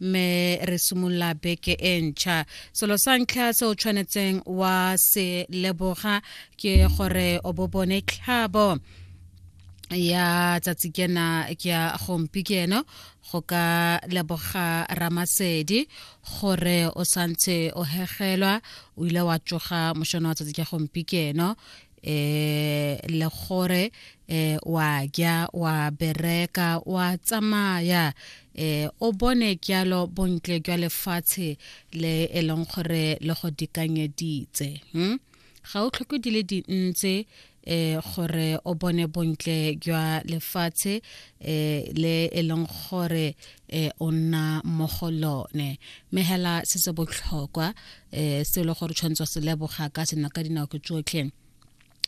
mme re simolola beke e ntšha selo sa ntlha se o tshwanetseng wa se leboga ke gore o bo bone tlhabo ya tsatsi kena ke ya gompi ke eno go ka leboga ramasedi gore o santse o hegelwa o ile wa tsoga mošono wa tsatsi ke gompi ke eno eh le gore eh wa ja wa bereka wa tsamaya eh o bone kyalo bontle jwa lefatshe le e leng gore le go dikanyeditse hm ga o tlhoke di le dintse eh gore o bone bontle jwa lefatshe eh le e leng gore eh o nna mo go lone mehela se se botlhokwa eh se le gore tshwantswa se leboga ka sena ka dinao ke tsotlhe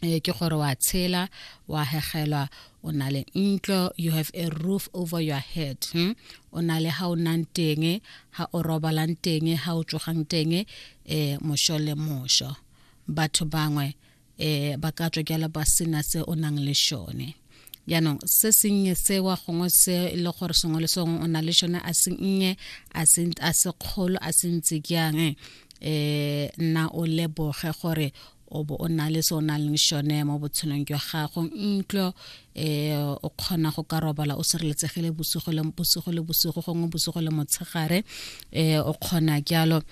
eh ke gore wa tshela wa hegelwa o na le ntlo you have a roof over your head hmm? o na le ha o nang teng ha o robalang teng ha o tsogang teng eh mosho le mosho batho bangwe eh ba ka tswa jalo ba sena se o nang le shone jaanong se sennye sewa gongwe se e le gore sengwe le sengwe o na le shone a sennye a se kgolo a se ntse jang um eh, nna o leboge gore o bo o na le se o na leng shone mo botshelong jwa gago ntlo um o kgona go ka robala o sireletsegile bosigo le bosigo gongwe bosigo le motshegare um o kgona jalo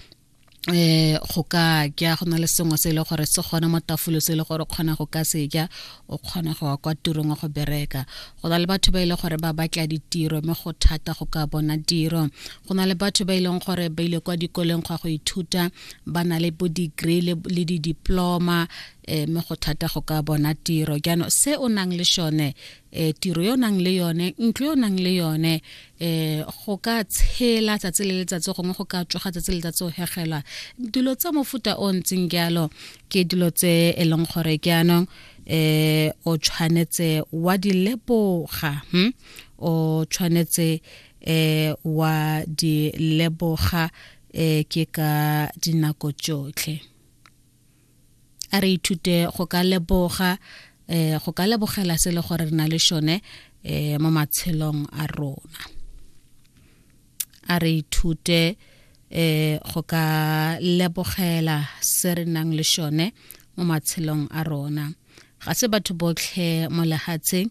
eh go ka ja go na le sengwe se e le gore se gone mo tafulo se e le gore kgona go ka se ja o kgona go wa kwa tirong wa go bereka go na le batho ba e le gore ba batla ditiro mme go thata go ka bona tiro go na le batho ba e leng gore ba ile kwa dikoleng go ya go ithuta ba na le bo degree le di-diploma um mme go thata go ka bona tiro jaanong se o nang le sone e tiro yo nang le yone ntlo yo nang le yone e go ka tshela tsatsi le letsatsi gongwe go ka tsoga tsatsi le letsatsi o hegelwa dilo tsa mofuta o ntseng jalo ke dilo tse e leng gore ke anong um o tshwanetse wa di leboga hmm? o tshwanetse um wa di leboga um ke ka dinako tsotlhe a re ithute go ka leboga um go ka lebogela se le gore re na le šone um mo matshelong a rona a re ithute um go ka lebogela se re nang le šone mo matshelong a rona ga se batho botlhe mo lehatsheng